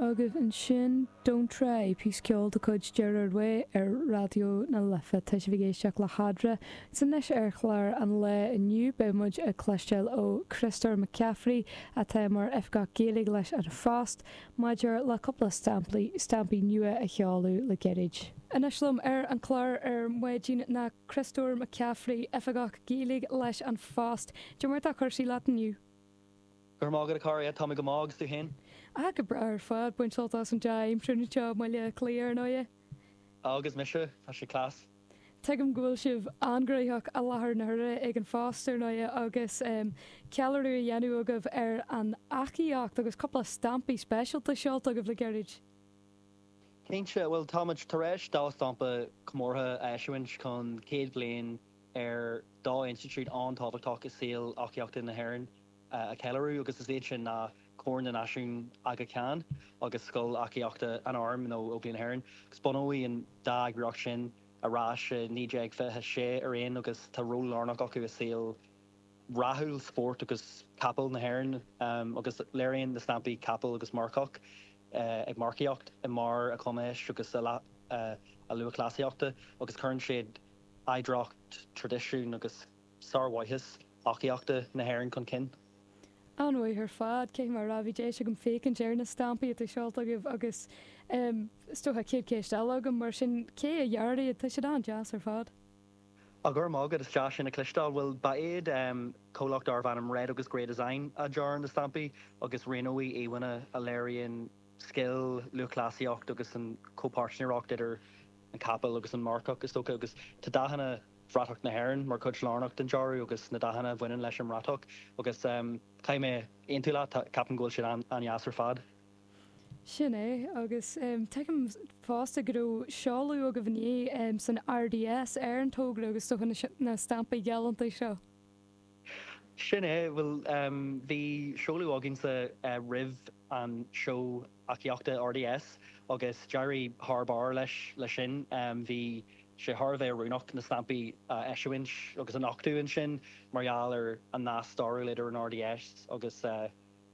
Agus ansin Don't Try, píos ceoil de chuid Gerard Way ar Raidió na Life. Tá sibh ag éisteacht le Cathair. Anois ar chlár an lae inniu. Beidh muid ag cloisteáil ó Chríostóir McCaffrey, atá mar Oifigeach Gaeilge leis An Phost, maidir le cúpla stampaí stampaí nua a seoladh le gairid. Anois liom ar an chlár ar maidin ná Críostóir McCaffrey, Oifigeach Gaeilge leis An Phost. Cad é mar atá cúrsaí leat inniu. Go raibh maith agat, a Chathair. Tá mé go maith, agus tú féin? Ah, go breá ar fad. Ag baint sult as an dea-aimsir anseo i mBaile Átha Cliath, ar ndóighe. Ah, agus mise. Tá sé class. Tuigim go bhfuil sibh an-ghnoitheach i láthair na huaire ag An Phost, ar ndóighe, agus em. ceiliúradh á dhéanamh agaibh ar an eachaíocht agus cúpla stampaí speisialta seolta agaibh le gairid. Cinnte. Bhuel, táimid tar éis dhá stampa comórtha a eisiúint chun céad bliain ar dhá institiúid an-tábhachtach i saol eachaíochta na hÉireann a cheiliúradh, agus is iad sin ná Corn na Náisiún, Aga Khan, agus Scoil Eachaíochta an Airm nó Óglaigh na hÉireann. Bunaíodh an dá eagraíocht sin arís i 1926 araon agus tá ról lárnach acu i saol rathúil spóirt agus capall na hÉireann agus léiríonn na stampaí capall agus marcach ag marcaíocht i mbarr a gcumais agus a lúthchleasaíochta agus cuireann siad oidhreacht, traidisiún agus sármhaitheas eachaíochta na hÉireann chun cinn. An-mhaith ar fad, cionn is go raibh deis agam féachaint ar na stampaí atá seolta agaibh agus is dócha chéad cheist eile agam, mar sin, cé a dhear iad? Tá siad an-deas ar fad. Á, go raibh maith agat, is deas sin a chloisteáil. Bhuel, ba iad comhlacht darbh ainm Red agus Grey Design a dhear na stampaí agus roghnaíodh íomhánna a léiríonn scil, lúthchleasaíocht agus an chomhpáirtnéireacht idir. an capall agus an marcach, is dócha, agus tá dathanna bhratach na hÉireann mar chuid lárnach den dearadh agus na dathanna a bhaineann leis an mbratach agus caithfidh mé aontú leat, ceapaim go bhfuil siad an-deas ar fad. Sin é, agus tuigim fosta go raibh seoladh agaibh inné san RDS ar an togra agus is dócha na stampaí galánta seo. Sin é, bhuel bhí seoladh againn roimh an seó eachaíochta RDS agus d'éirigh thar barr leis sin. Bhí sé thar a bheith oiriúnach na stampaí a eisiúint agus a nochtadh ansin mar gheall ar an nasc stairiúil idir an RDS agus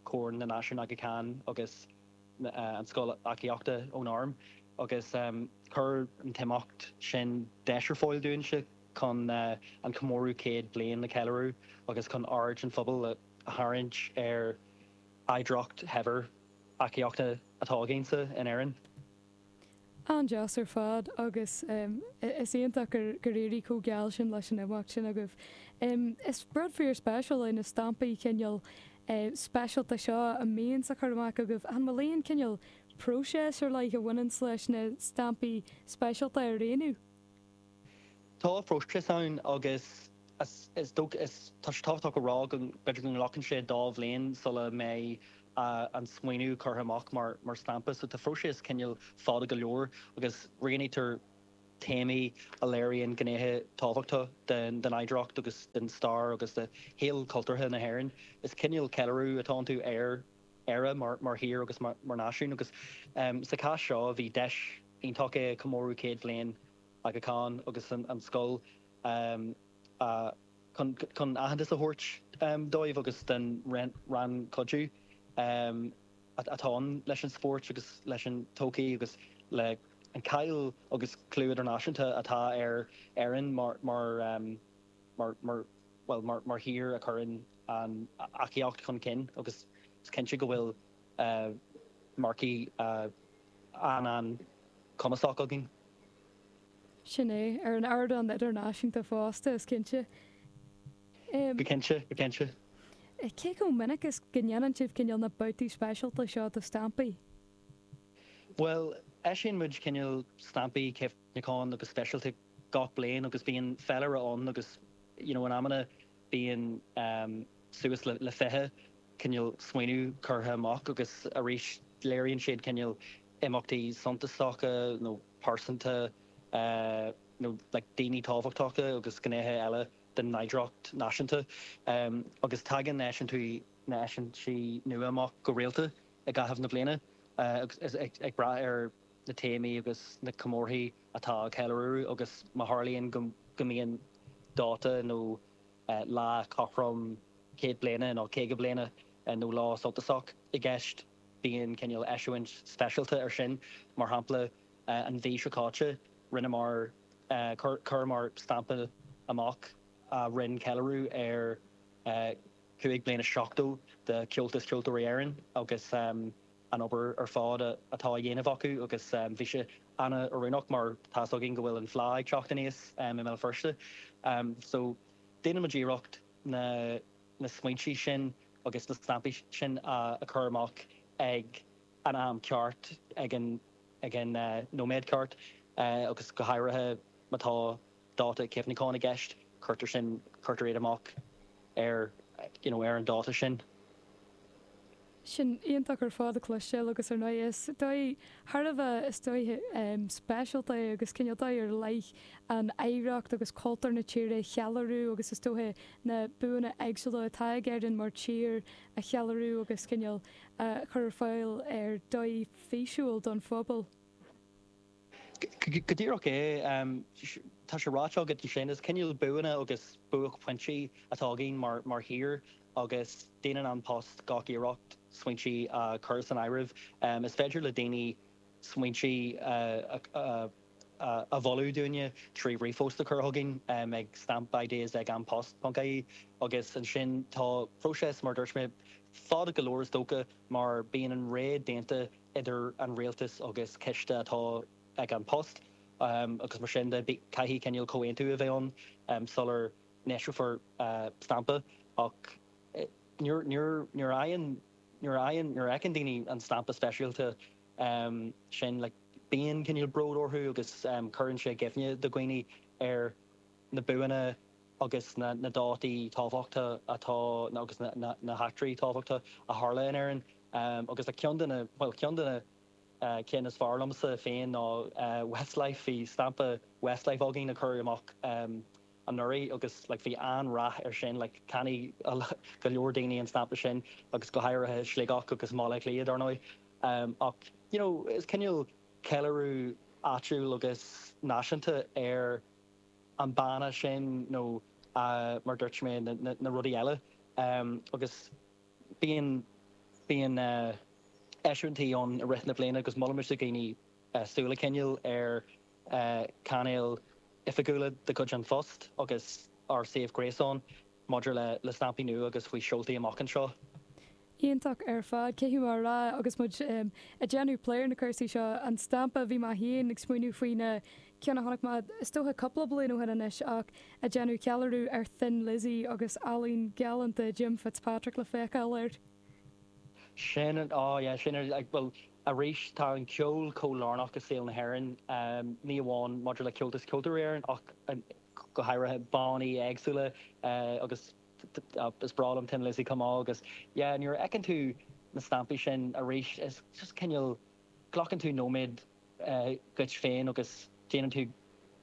Corn na Náisiún Aga Khan agus an Scoil Eachaíochta ón Arm agus chuir an t-imeacht sin deis ar fáil dúinn chun an comóradh céad bliain a cheiliúradh agus chun aird an phobail a tharraingt ar oidhreacht shaibhir eachaíochta atá againn anseo in Éirinn. An-deas ar fad agus is iontach gur éirigh chomh geal sin leis an imeacht sin agaibh. Is rud fíor spéisiúil é na stampaí cineál speisialta seo a bhíonn sibh ag cur amach agaibh. An bhfuil aon chineál próiseas ar leith a bhaineanns leis na stampaí speisialta a roghnú? Tá próiseas ann agus is dócha, is tá sé tábhachtach a rá, go mb'fhéidir go nglacann sé dhá bhliain sula mbeidh an smaoineamh curtha amach mar stampa. So tá próiseas cineál fada go leor agus roghnaítear téamaí a léiríonn gnéithe tábhachtacha den oidhreacht agus den stair agus de shaol cultúrtha na hÉireann. Is cineál ceiliúradh atá iontu ar Éire mar thír agus mar náisiún agus sa chás seo bhí deis iontach le comóradh céad bhliain Aga Khan agus an stampa chun aitheantas a thabhairt dóibh agus don rannchuidiú atá ann leis an spórt agus leis an tsochaí agus leis an cháil agus clú idirnáisiúnta atá ar Éirinn mar mar thír a chuireann an eachaíocht chun cinn agus is cinnte go bhfuil marcaigh an-chumasach againn. Sin é, ar an ardán idirnáisiúnta fosta, is cinnte. Go cinnte, go cinnte. Cé chomh minic is go ndéanann sibh cineál na babhtaí speisialta seo de stampaí? Bhuel, eisíonn muid cineál stampaí cuimh neacháin agus speisialta gach bliain agus bíonn féilire ann agus you know in amanna bíonn suas le fiche cineál smaoineamh curtha amach agus arís léiríonn siad cineál imeachtaí suntasacha nó pearsana nó like daoine tábhachtacha agus gnéithe eile den oidhreacht náisiúnta agus tagann na heisiúintí na heisiúintí nua amach go rialta i gcaitheamh na bliana agus ag brath ar na téamaí agus na comórthaí atá á gceiliúradh agus má tharlaíonn go mbíonn dáta nó lá cothrom céad bliana nó caoga bliana nó lá suntasach i gceist bíonn cineál eisiúint speisialta air sin. Mar shampla, an mhí seo caite rinneamar, chuireamar stampa amach a rinne ceiliúradh ar chúig bliana is seachtó de Chomhaltas Ceoltóirí Éireann agus, an obair ar fad atá á dhéanamh acu agus bhí sé an-oiriúnach mar tá's againn go bhfuil an Fleá ag teacht aníos i mBéal Feirste so déanann muid iarracht na smaointe sin agus na stampaí sin a chur amach ag an am ceart ag an nóiméad ceart agus go háirithe má tá dáta cuimhneacháin i gceist, cuirtear sin, cuirtear iad amach ar, you know, ar an dáta sin. Sin iontach ar fad a chloisteáil agus ar ndóigh is dóigh, thar a bheith, is dóigh speisialta é agus cineál dóigh ar leith an oidhreacht agus cultúr na tíre a cheiliúradh agus is dócha na buanna éagsúla atá ag Éirinn mar thír a cheiliúradh agus cineál a chur ar fáil ar dhóigh físiúil don phobal. Go díreach é. Tá sé ráite agat ansin, is cineál, buanna agus buaicphointí atá againn mar thír agus déanann An Post gach iarracht smaointe a chur san áireamh. Is féidir le daoine smaointe a mholadh dúinne trí ríomhphost a chur chugainn ag stampideas ag anpost ponc ie agus ansin tá próiseas, mar a dúirt mé, fada go leor is dócha mar bíonn an réiteach déanta. idir an Rialtas agus coiste atá ag An Post agus mar sin de caithfidh cineál comhaontú a bheith ann sular n-eisreofar stampa ach nuair a fheiceann daoine an stampa speisialta sin bíonn cineál bród orthu agus cuireann sé i gcuimhne do dhaoine ar na buanna agus na dátaí tábhachtacha atá agus na heachtraí tábhachtacha a tharla in Éirinn. Um, agus le ceann de na, bhuel, ceann de na, eh, cinn is fearr liomsa féin ná, eh, Westlife. Bhí stampa Westlife againn a cuireadh amach, em, anuraidh agus, like, bhí an-rath air sin. Like, cheannaigh go leor daoine an stampa sin agus go háirithe i Sligeach agus i mBaile Átha Cliath, dar ndóigh. Em, ach, you know, is cineál ceiliúradh áitiúil agus náisiúnta ar an bhanna sin nó, eh, mar dúirt mé, na, na, na rudaí eile. Em, agus. Bíonn bíonn eisiúintí ann i rith na bliana agus molaimid do dhaoine súil a choinneáil ar chainéil oifigiúla de chuid An Phost agus ár suíomh gréasáin maidir le le stampaí nua agus faoi sheoltaí amach anseo. Iontach ar fad. Caithfidh mé a rá agus muid ag déanamh plé ar na cúrsaí seo, an stampa, bhí mé féin ag smaointiú faoin ceann a chonaic mé is dócha cúpla bliain ó shin anois ach ag déanamh ceiliúradh ar Thin Lizzy agus ealaín galánta Jim Fitzpatrick le feiceáil air. Sin an, á yeah, sin an, bhuel arís tá an ceol chomh lárnach i saol na hÉireann, ní amháin maidir le Comhaltas Ceoltóirí Éireann ach go háirithe bannaí éagsúla agus is breá liom Thin Lizzy chomh maith agus yeah nuair a fheiceann tú na stampaí sin arís is just cineál glacann tú nóiméad dhuit féin agus déanann tú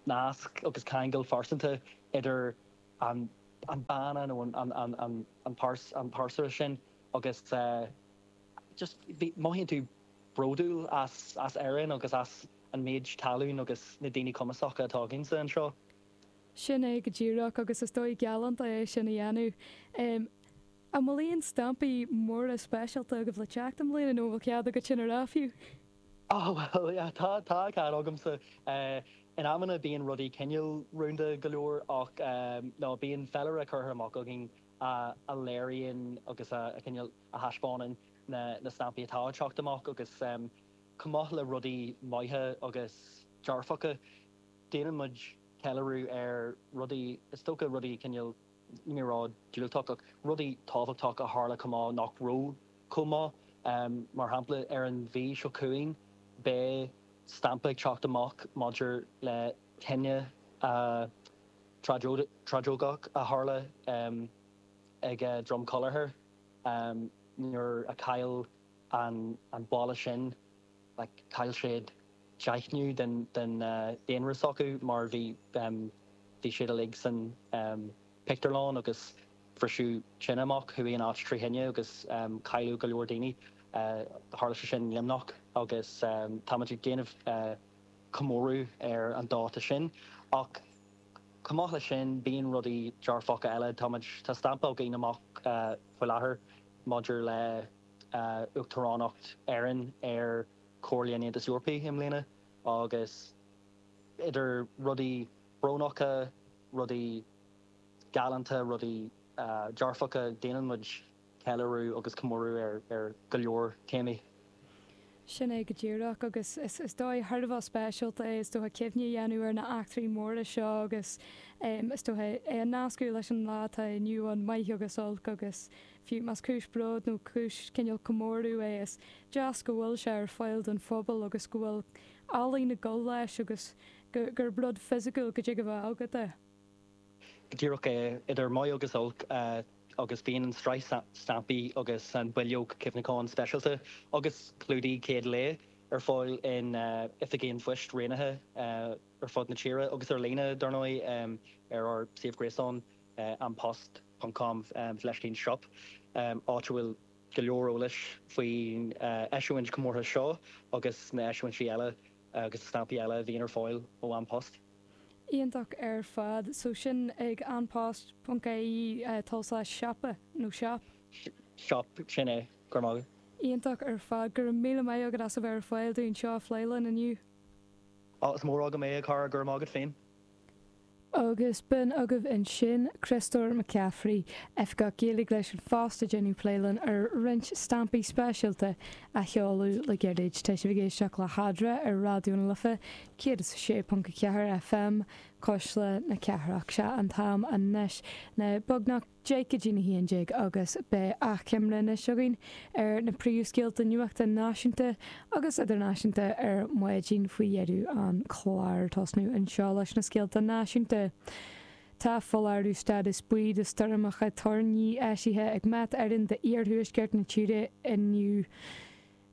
nasc agus ceangal pearsanta idir an banna nó an pearsa sin agus just mothaíonn tú bródúil as Éirinn agus as an méid tallann agus na daoine cumasacha atá againne anseo. Sin é go díreach agus is dóigh galánta é sin a dhéanamh. An bhfuil aon stampaí móra speisialta agaibh le teacht i mbliana nó an bhfuil cead agat sin a rá fiú? Á bhuel, yeah, tá, tá cead agamsa. In amanna bíonn rudaí cineál rúnda go leor ach no, bíonn féilire curtha amach againn a léiríonn agus a cineál a thaispeánann na na stampaí atá ag teacht amach agus chomh maith le rudaí maithe agus dearfacha déanann muid ceiliúradh ar rudaí, is dócha rudaí cineál níos diúltaí ach rudaí tábhachtacha a tharla chomh maith nach raibh chomh maith. Mar shampla, ar an mhí seo chugainn beidh stampa ag teacht amach maidir le tine thragóideach a tharla ag Drom Collachair nuair a chaill an baile sin, chaill siad deichiú den daonra s'acu mar bhí siad uilig san pictiúrlann agus bhris tine amach, chuaigh an áit trí thine agus cailleadh go leor daoine. Tharla sé sin i Luimneach agus táimid ag déanamh comóradh ar an dáta sin ach chomh maith leis sin bíonn rudaí dearfacha eile. Táimid, tá stampa againn amach faoi láthair maidir le hUachtaránacht na hÉireann ar Chomhairle an Aontais Eorpaigh i mbliana agus idir rudaí brónacha, rudaí galánta, rudaí dearfacha, déanann muid ceiliúradh agus comóradh ar go leor téamaí. Sin é go díreach, agus is dóigh thar a bheith speisialta é is dócha cuimhne a dhéanamh ar na eachtraí móra seo agus is dócha é a nascadh leis an lá atá inniu ann, maith agus olc, agus fiú más cúis bróid nó cúis cineál comóradh é is deas go bhfuil sé ar fáil don phobal agus go bhfuil ealaín ag dul leis agus gurb rud fisiciúil go dtig a bheith agat é. Go díreach é, idir maith agus olc. agus bíonn an tsraith stampaí agus an bileog cuimhneacháin speisialta agus clúdaigh chéad lae ar fáil in oifigí an phoist roghnaithe ar fud na tíre agus ar líne, dar ndóigh, ar ár suíomh gréasáin An Post ponc com slaistín shop, áit a bhfuil go leor eolais faoin eisiúint chomórtha seo agus na heisiúintí eile agus na stampaí eile a bhíonn ar fáil ó An Post. iontach ar fad. So sin ag An Post ponc IE tulslais siopa nó shop. shop, sin é. Go raibh maith agat. Iontach ar fad. Go raibh míle maith agat as a bheith ar fáil dúinn seo a phlé linn inniu. Is mór agam é, a chara. Go raibh maith agat féin. Agus b'in agaibh ansin Criostóir Mac Cafraidh, Oifigeach Gaeilge leis An Phost, ag déanamh plé linn ar roinnt stampaí speisialta a sheoladh le gairid. Tá sibh ag éisteacht le hEadra ar Raidió na Life 106.4 FM, Cuisle na Cathrach, Sea an t-am anois ná beagnach deich go dtí na haon déag agus beidh achoimre anois againn ar na príomhscéalta nuachta náisiúnta agus idirnáisiúnta ar maidin faoi dheireadh an chláir. Tosnú anseo leis na scéalta náisiúnta. Tá foláireamh stádas buí do stoirmeacha toirní eisithe ag Met Éireann d'Iarthuaisceart na tíre inniu.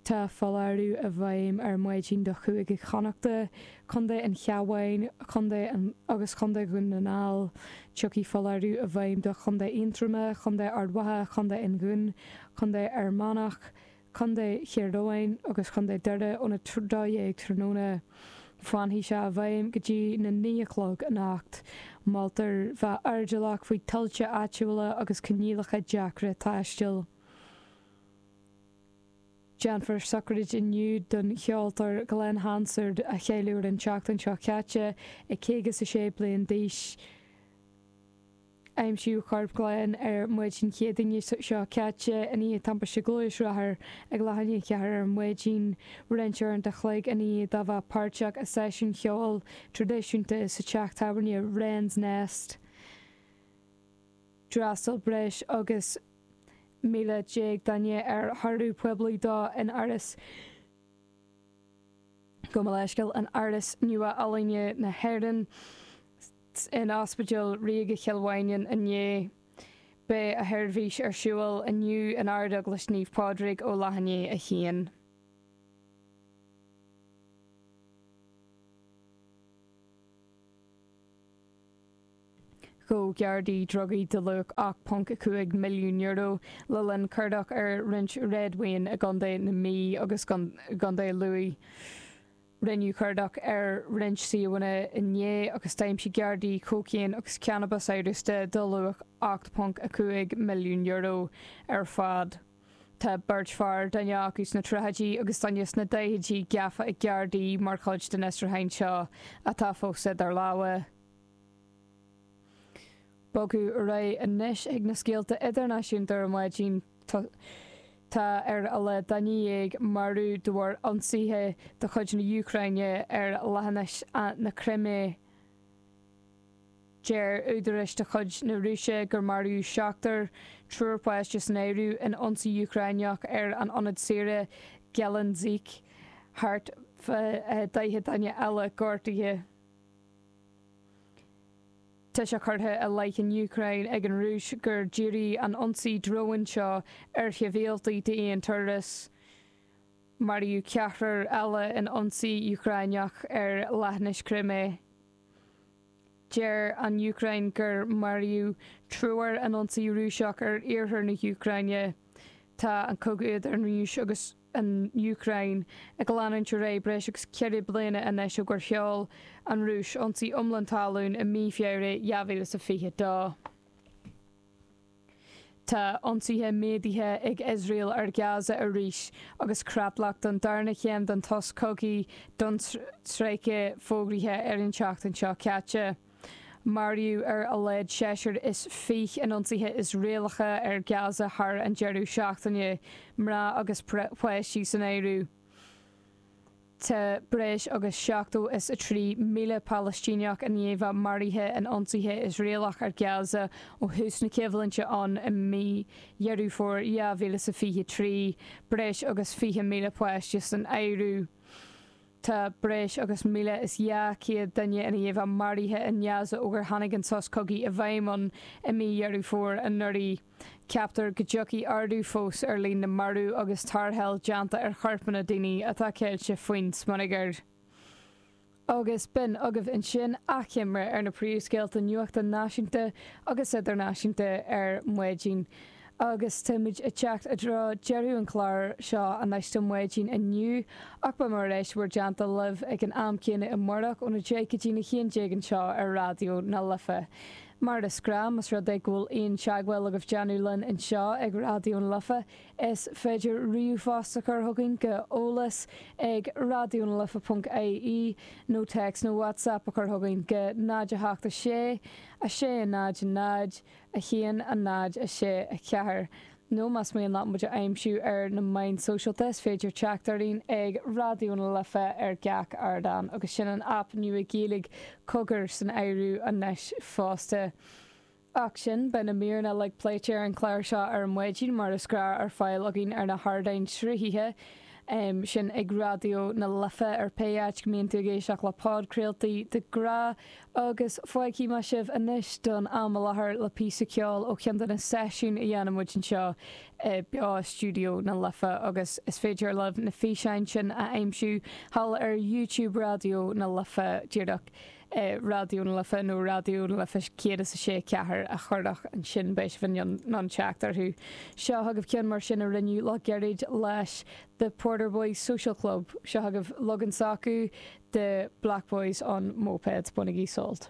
Tá foláireamh i bhfeidhm ar maidin do Chúige Chonnachta, Co an Chabháin, Co an, agus Co Dhún na nGall. Tiocfaidh foláireamh i bhfeidhm do Chontae Aontroma, Co Ard Mhacha, Co an Dhún, Co Fhear Manach, Co Thír Eoghain agus Co Doire óna 12:00 tráthnóna. Fanfaidh sé i bhfeidhm go dtí na 9 a chlog anocht. Moltar bheith airdeallach faoi thuilte áitiúla agus coinníollacha deacra taistil. Déanfar sochraid inniu don cheoltóir Glen Hansard a cailleadh an tseachtain seo caite ag caoga is a sé bliain d'aois. Aimsíodh corp Glen ar Maidin Chéadaoine seo caite i ndiaidh timpiste gluaisrothair ag leath i ndiaidh a ceathair ar maidin, roinnt uaireanta an chloig i ndiaidh dó bheith páirteach i seisiún cheoil tradisiúnta sa teach tábhairne Wren's Nest. D'fhreastal breis agus. 11,000 duine ar thórramh poiblí dó in Áras gabh mo leithscéal, in Áras Nua-Ealaíne na hÉireann in Ospidéal Ríoga Chill Mhaighneann inné. Beidh a sheirbhís ar siúl inniu in Ardeaglais Naomh Pádraig, ó leath i ndiaidh a 1. Ghabh Gardaí drugaí de luach €8.5 milliún le linn cuardach ar roinnt réadmhaoin i gContae na Mí agus gContae Lú. Rinneadh cuardach ar roinnt suíomhanna inné agus d'aimsigh Gardaí cócaon agus cannabas amhrasta de luach €8.5 milliún ar fad. Tá beirt fear, duine acu sna tríochaidí agus duine sna daichidí, gafa ag Gardaí mar chuid den fhiosrúchán seo, atá fós idir lámha. bogadh ar aghaidh anois chuig na scéalta idirnáisiúnta ar maidin tá ar a laghad duine dhéag maraithe de bharr ionsaithe de chuid na Úcráine ar leathinis na Crimé deir údaráis de chuid na Rúise gur maraíodh seachtar, triúr páistí san áireamh, in ionsaí Úcráineach ar an ionad saoire Gelendzhik thart fá 40 duine eile gortaithe. Tá sé curtha i leith na hÚcráine ag an Rúis gur díríodh an t-ionsaí dróin seo ar shibhialtaigh d'aon turas. Maraíodh ceathrar eile in ionsaí Úcráineach ar Leathinis Crimé. Deir an Úcráin gur maraíodh triúr in ionsaí Rúiseach ar iarthar na hÚcráine. Tá an cogadh idir an Rúis agus. an Úcráin, ag leanúint ar aghaidh breis agus ceithre bliana anois ó gur sheol an Rúis ionsaí iomlán talún i mí Feabhra 2022. Tá ionsaithe méadaithe ag Iosrael ar Ghaza arís agus creatlach don darna chéim den tsos cogaidh don stráice fógraithe ar an tseachtain seo caite. Maraíodh ar a laghad seisear is fiche in ionsaithe Iosraelacha ar Gaza thar an deireadh seachtaine, mná agus páistí san áireamh. Tá breis agus seachtó is a trí míle Palaistíneach i ndiaidh a maraithe in ionsaithe Iosraelacha ar Gaza ó thús na coimhlinte ann i mí Dheireadh Fómhair 2023, breis agus fiche míle páistí san áireamh. Tá breis agus 1,200 duine i ndiaidh a maraithe i nGaza ó gur tháinig an sos cogaidh i bhfeidhm ann i mí Dheireadh Fómhair anuraidh. Ceaptar go dtiocfaidh ardú fós ar líon na marbh agus tarrtháil déanta ar chorpanna daoine atá ceilte faoin smionagar. Agus b'in agaibh ansin achoimre ar na príomhscéalta nuachta náisiúnta agus idirnáisiúnta ar maidin. agus táimid ag teacht i dtreo deireadh an chláir seo anois don mhaidin inniu ach beimid ar ais i bhur dteannta libh ag an am céanna amáireach óna deich go dtí a haon déag anseo ar Raidió na Life. Mar is gnáth, más rud é go bhfuil aon teagmháil agaibh déanamh linn anseo ag Raidió na Life, is féidir ríomhphost a chur chugainn go eolas ag raidiónalife.ie nó téacs nó WhatsApp a chur chugainn go 0 7 6 6 0 0 1, 0, 6, 4, nó más mian leat muid a aimsiú ar na meáin sóisialta is féidir teacht orainn ag Raidió na Life ar gach ardán agus sin an aip nua Gaeilge Cogar san áireamh anois fosta. Ach sin, beidh na míreanna uilig pléite ar an chlár seo ar maidin mar is gnách ar fáil againn ar na hardáin sruthaithe sin ag Raidió na Life ar pé áit go mbíonn tú ag éisteacht le podchraoltaí de ghnáth agus fágfaidh mé sibh anois don am i láthair le píosa ceoil ó cheann de na seisiúin a dhéanann muid anseo i mBeo-Stiúideo na Life agus is féidir libh na físeáin sin a aimsiú thall ar YouTube Raidió na Life díreach Raidió na Life nó Raidió na Life céad is a sé a ceathair a chur isteach ansin beidh sibh in ann teacht orthu. Seo chugaibh ceann mar sin a rinneadh le gairid leis The Porter Boys Social Club, Seo agaibh log-in s'acu de Black Boys on Mopeds, bainigí sult!